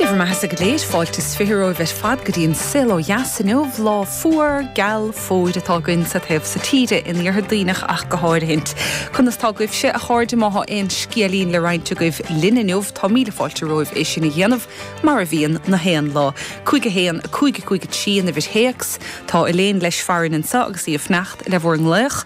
Dé bhur mbeathasa go léir. Fáilte 's fiche romhaibh ar fad go dtí an Saol Ó Dheas inniu. Lá fuar, geal, fómhair atá againn sa taobh so tíre, in Iarthar Duibhneach ach go háirithint. Conas tá agaibhse, a chairde, má thá aon scéilín le roinnt agaibh linn inniu, tá míle fáilte romhaibh é sin a dhéanamh, mar a bhíonn, na haon lá. 51, 5, 5, 3 an uimhir théacs. Tá Elaine leis farainn anseo agus í ag fanacht le bhur nglaoch.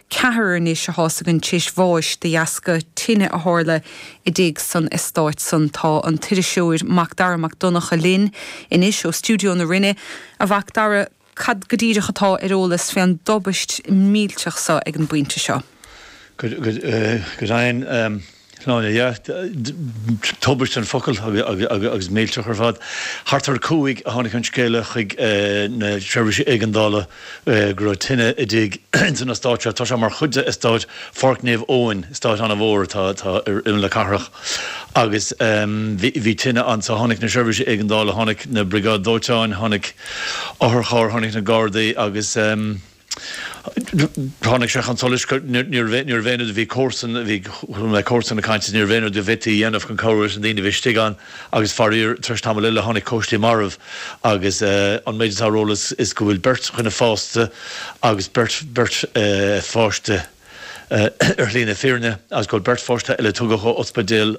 Ceathrar anois a thástáil an t-anbhás de dheasca tine a tharla i dtigh san estáit san. Tá an t-iriseoir Macdara Mac Donnacha linn anois ó stiúideo na Rinne. A Mhac Dara, cad go díreach atá ar eolas fé an dtubaist millteach so ag an bpointe seo? Good, good, eh, good, I'm, um. Sláine, yeah. Tubaist an focal agus millteach ar fad. Thart ar a cúig a tháinig an scéala chuig na seirbhísí éigeandála go raibh tine i dtigh ins an eastát seo. Tá sé mar chuid de eastát Pháirc Naomh Eoin, eastát an-mhór atá ar imeall na cathrach, agus bhí tine ann. So tháinig na seirbhísí éigeandála, tháinig na briogáid dóiteáin, tháinig otharchairr, tháinig na Gardaí agus. Tháinig sé chun solais níorbh aon rud, bhí comharsa, bhí comharsain ag caint, is níorbh aon rud a bhféadfaí a dhéanamh chun cabhrú leis na daoine a bhí istigh ann agus faraor, tar éis tamaill eile, tháinig cóistí marbh agus an méid atá ar eolas is go bhfuil beirt dhuine fásta agus beirt, beirt pháiste ar shlí na fírinne agus go bhfuil beirt pháiste eile a tugadh ó ospidéal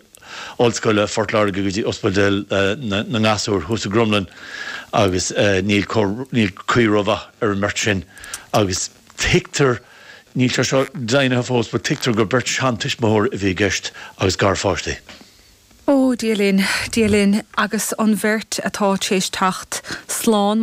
Ollscoile Phort Láirge go dtí Ospidéal na nGasúr thuas i gCromghlinn agus níl níl caoi rómhaith ar an mbeirt sin agus tuigtear, níl sé seo deimhnithe fós, but tuigtear gur beirt seantuismitheoir a bhí i gceist agus garpháistí. Ó, Dia linn, Dia linn, agus an bheirt atá téis teacht slán,